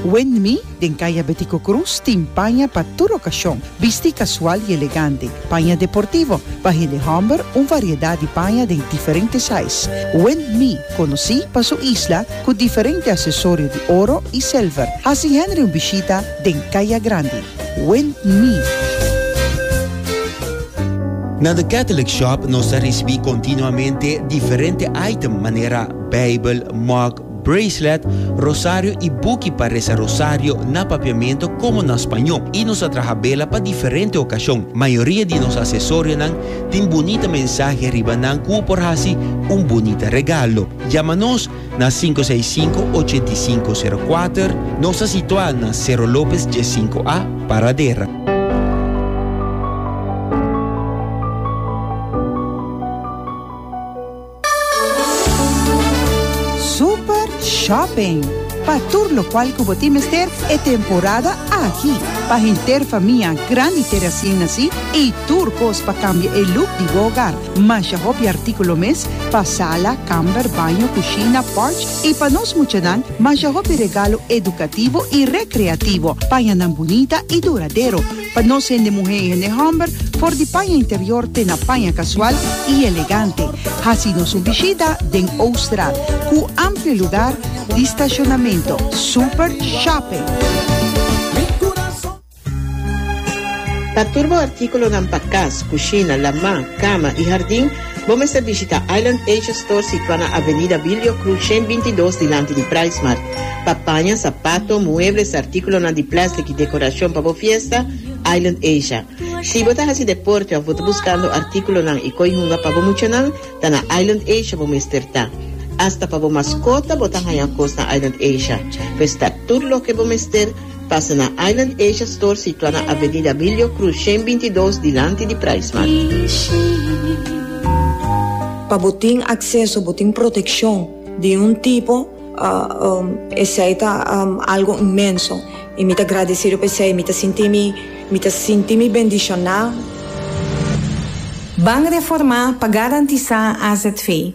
Wendmi den Kaya Betico Cruz tin paña pa tur okashon, bisti kasual i elegante, paña deportivo, pa hende hòmber un variedat di paña den diferente sais. Wendmi, konosí pa su isla ku diferente asesorio di oro i silver, hasi Henry un bishita den Kaya Grandi. Wendmi. Na The Catholic Shop nos ta risibí kontinuamente diferente item manera Beibel, mug, bracelet, rosario y buki pa reza rosario na papiamento como na spaño y nos a traha bela pa diferente ocasion. Mayoria di nos acesorianan tin bunita mensahe riba nan cu u por haci un bunita regalo. Yama nos na sinku seis sinku ochentu i sinku seru kuater, nos ta situa na Cerro Lopez dies sinku A, Paradera. Super Shopping, Pa tur lokual ku bo tin mester e temporada aki. Pa henter famia grandi te resien nasí i tur kos pa kambia e luk di bo ogar. Masha hopi artíkulo mes pa sala, kamber, baño, kushina, pòrch i pa nos muchanan masha hopi regalo edukativo i rekreativo. Paña nan bunita i duradero. Pa nos hende muhé i hende hòmber, for di paña interior te na paña kasual i elegante. Hasi nos un bishita den Oosterhout, ku amplio lugar di stashonamentu, super shopping. Pa tur bo artíkulonan pa kas, kushina, lamá, kama i hardin. Bo mester bishita Island Asia Store situá na Avenida Bilio Cruz shen binti dos dilanti di Pricemart. Pa paña sapato, muebles, artíkulonan di plèstik i dekorashon pa bo fiesta, Island Asia. Si bo ta hasi deporte òf bo ta buskando artíkulonan i koi hunga pa bo muchanan, ta na Island Asia bo mester ta. Asta pa bo maskota bo ta haña kos na Island Asia. Pues ta tur loke bo mester. Pasa na Island Asia Store situa na Avenida Abilio Cruz shen binti dos dilanti di Price Mart. Pa bo tin acceso, bo tin proteccion di un tipo, esey ta algo inmenso y mi ta gradecido pa esey, mi ta sinti mi, mi ta sinti mi bendiciona. Ban Reforma pa garantisa azv.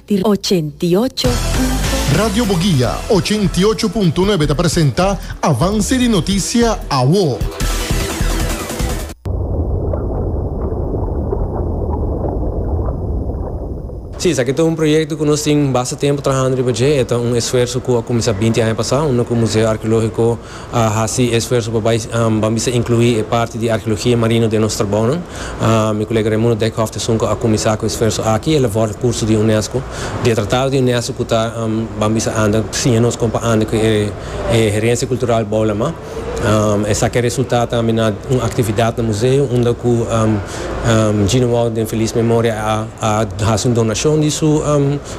di ochenta i ocho punto nuebe. Radio Boguia ochenta i ocho punto nuebe ta presenta Avance di Noticia Awo. Sí, esaki ta un proyekto ku nos tin basta tempu trahando riba dje. E ta un esfuerso ku a kuminsá binti aña pasá, unda ku Museo Arkeológiko. a hasi esfuerso pa bai ban bisa inclui e parti di arheologia marino den nos trabounan. Mi colega Raimundo Dijkhoff ta esun cu a cuminsa cu e esfuerso aki, el a vorta curso di UNESCO. Di e tratado di UNESCO cu ta Ban bisa anda, siña nos con pa anda cu e herencia cultural bou lama. Esaki a resulta tambe na un actividad na museo unda cu Gino Wout den feliz memoria a hasi un donacion di su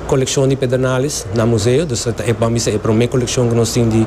coleccion di pedernales na museo. Dus ta e ban bisa e prome coleccion cu nos tin di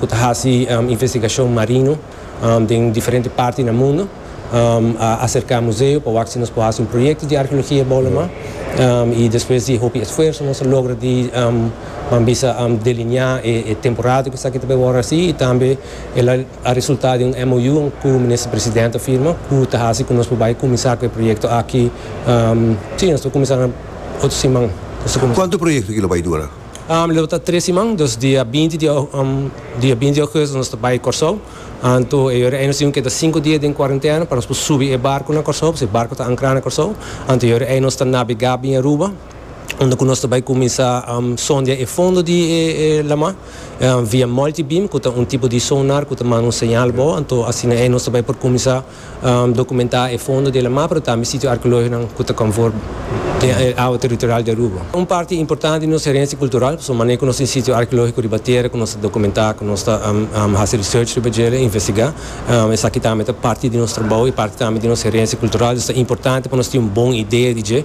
ku ta hasi investigashon marino den diferente parti na mundu a aserká museo pa wak si nos por hasi un proyekto di arkeologia Bolama i despues di hopi esfuerso nos a logra di nan bisa delineá e temporada ku esaki ta bai wòrdu hasi i tambe el a resultá den un MOU ku Minister Presidente a firma ku ta hasi ku nos por bai kuminsá ku e proyekto aki si nos ta kuminsá na otro siman. Kuantu proyekto aki lo bai dura? Lo ta tres siman, dus dia binti di dia binti di augustus nos ta bai Kòrsou. Anto e yòrda ei nos tin ku keda sinku dia den kuarentena pa nos por subi e barku na Kòrsou, pasobra e barku ta ankrá na Kòrsou. Anto e yòrda ei nos ta nabegá bin Aruba, unda ku nos ta bai kuminsá sondia e fondo di e lamá via multi-beam ku ta un tipo di sonar ku ta manda un señal abou. Anto asina ei nos ta bai por kuminsá. Dokumentá e fondo di Alamá pero tambe sitio arkeológikonan ku ta konfor den e awa teritorial di Aruba. Un parti importante di nos herensia kultural pasobra manera ku nos tin sitio arkeológiko riba tera ku nos ta dokumentá, ku nos ta hasi research riba dje, ta investigá. Esaki tambe ta parti di nos trabou i parti tambe di nos herensia kultural, dus ta importante pa nos tin un bon idea di dje.